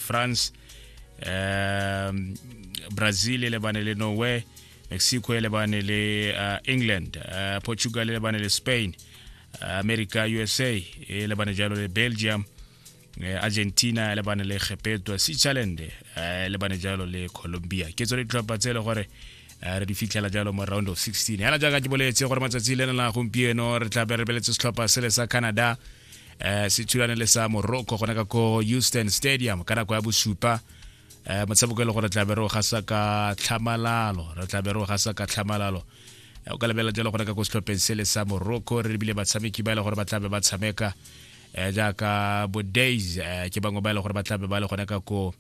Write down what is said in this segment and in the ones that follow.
france um, brazil e lebane le norway mexico e lebane le uh, england uh, portugal e lebane le spain uh, america usa e lebane jalo le belgium uh, argentina e lebane le gepeto switzerland uh, e lebane jalo le colombia ke tsone ditlhopha tse e le gore Eh, re di fitlhela jalo mo round of 16 yana jaaka ke boletse gore matsatsi le na gompieno re tla be re beletse setlhopha sele sa canada eh se thulane le sa Morocco gona ka ko Houston Stadium ka nako ya bosupa eh motshameko e le gore tla bero ga sa ka tlhamalalo re tla bero ga sa ka tlhamalalo eh, o ka lebela jalo gona ka go setlhopheng se le sa Morocco re bile batshameki ba e le gore ba tla be ba tshameka eh jaaka bo days eh, ke bangwe ba e le gore ba tla be ba le gona ka ko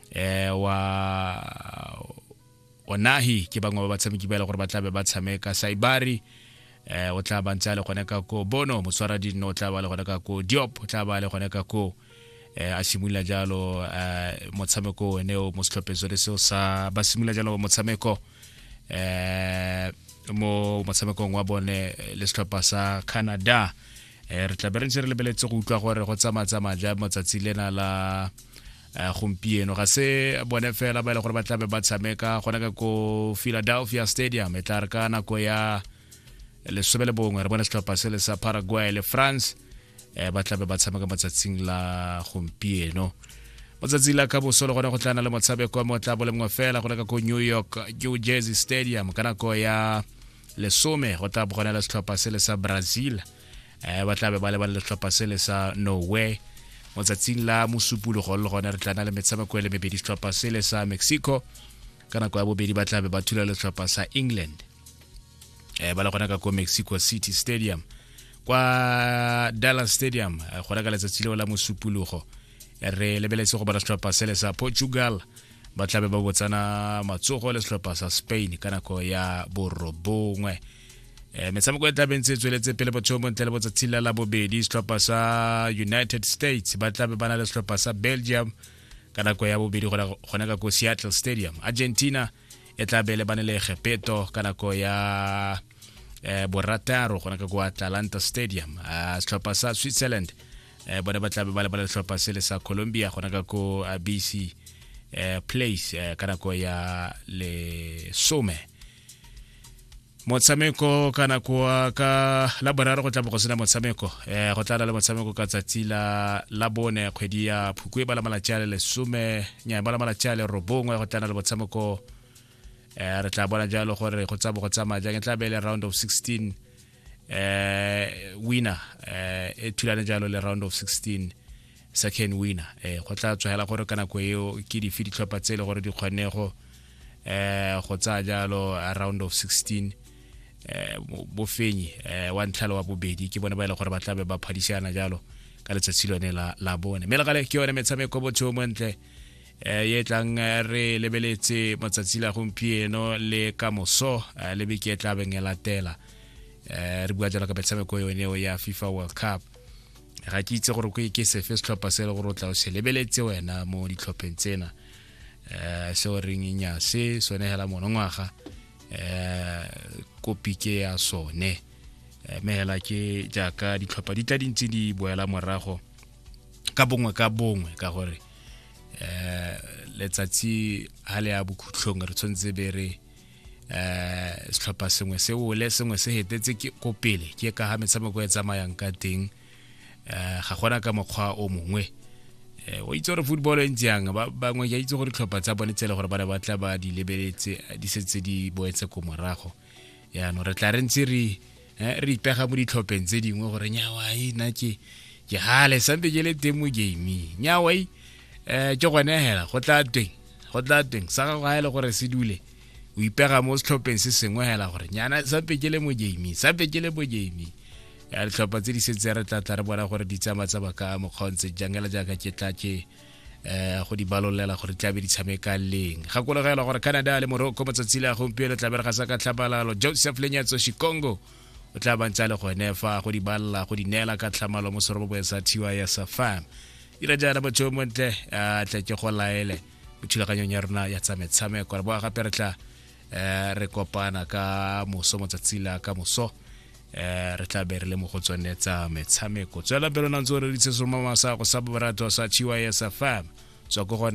eh wa onahi ke bangwe ba batshameki ba e le gore ba tlabe ba tshameka saibari um o tla ba ntse a le gone ka ko bono motswara dinno o tla ba le gone ka ko diop o tla ba le gone ka ko um a simolola jalo um motshameko one o mo setlhopheng sone seo sa ba simolola jalo motshameko um mo motshamekong wa bone le setlhopha sa canada um re tla be re ntse re lebeletse go utlwa gore go tsamaya tsamaya ja motsatsi lena la Eh, gompieno ga se bone fela ba e le gore ba tlabe ba tshameka gona ka ko philadelphia stadium e tla re ka nako ya lesome le bongwe re bone setlhopha se le sa paraguay le france um ba tlabe ba tshameka motsatsing la gompieno motsatsi la ka boso le gone go tlana le motshameko wa motla bolengwe fela gone ka ko new york new jersey stadium ka nako ya lesome go tla bogona le setlhopha se le sa brazil um ba tlabe ba le ba le letlhopha sele sa norway mo tsatsing la mosupologo le gone re tla na le metshameko e le mebedi setlhopha sele sa mexico ka nako ya bobedi ba tlabe ba thula letlhopha sa england um ba le gona ka ko mexico city stadium kwa dallas stadium eh, gona ka letsatsi leo la mosupologo re lebeletse go bona setlhopha sele sa portugal ba tlabe ba botsana matsogo le setlhopha sa spain ka nako ya borobongwe eh, metshameko e tlabeng tse e tsweletse pele botsheo bontle le botsatsi la la bobedi setlhopha sa united states ba tlabe ba na le setlhopha sa belgium ka nako ya bobedi gone ka ko seattle stadium argentina e tla be le bane le egepeto ka nako ya eh, borataro gona ka ko atlanta stadium ah, setlhopha sa switzerland eh, bone ba tlabe ba le ba le setlhopha se le sa colombia gona ka ko ah, bc eh, place eh, ka nako ya lesome motshameko ka nako ka la boraro go tla bo go sena motshameko um go tla na le motshameko ka tsatsi la la bone kgwedi ya phukwe ba la malatsi a le lesome nya ba la malatsi a le robongwe go tla na le motshameko um re tla bona jalo gore go tsabo go tsamaya jang e tla be le round of 16 um winner um e thulane jalo le round of 16 sa can winner eh go tla tswela gore ka nako eo ke dife ditlhopha tse le gore di kgone go eh go tsaya jalo round of 16 eh bofenyi eh wa ntlhalo wa bobedi ke bone ba ile e gore ba tlabe ba phadisana jalo ka letsatsi lone la la bone mme legale ke yone metshameko botho mo ntle eh ye tlang eh, re lebeletse matsatsi la gompieno le ka moso eh, le beke e tla beng e latela eh re bua jalo ka metshameko yone ya FIFA World Cup ga ke itse gore ke sefe setlhopha se le gore o tla o se lebeletse wena mo ditlhopheng tsena um se o reng nyase sone hela monongwaga um kopi ke ya sone mme hela ke jaaka ditlhopha di tla dintse di boela morago ka bongwe ka bongwe ka gore um letsatsi ha le ya bokhutlhong re tshwanetse be re eh setlhopha sengwe se ole sengwe se hetetse ke ko pele ke ka ha metshameko e tsamayang ka teng eh ga gona ka mokgwa o mongwe eh o itse gore football e ntse yang ba bangwe ke itse gore ditlhopha tsa bone tsele gore ba ne ba tla ba di lebeletse di setse di boetse ko morago yaanong re tla re ntse re eh, re ipega mo ditlhopheng tse dingwe gore nyawa e na ke ke gale sampe ke le teng mo gaming nyawa e um ke gone hela go tla teng go tla teng sa gago ga e le gore se dule o ipega mo setlhopheng se sengwe hela gore nyana sampe ke le mo gaming sampe ke le mo gaming ya ditlhopha tse di setse re tla tla re bona gore di tsamaya tsa baka mokgaontse jangela jaaka ke tla ke eh go di balolela gore tlabe di tshameka leng ga kolegela gore canada le morocco matsatsi le a gompieno tlabe re ga sa ka tlhamalalo joseph lenyatso chikongo o tla bantse a le gone fa go di balela go di neela ka tlhamalo mo serobobong sa tiwa ya safam ira jaana motho o montle a tle ke go laele mo thulaganyong ya rona ya tsa metshameko re boa gape re tla eh, re kopana ka moso motsatsi la ka moso eh, re tla be re le mo go tsone tsa metshameko tswela pelo nantse o reditse soma masako sa borato sa chiwa ya sa fam tswa ko gone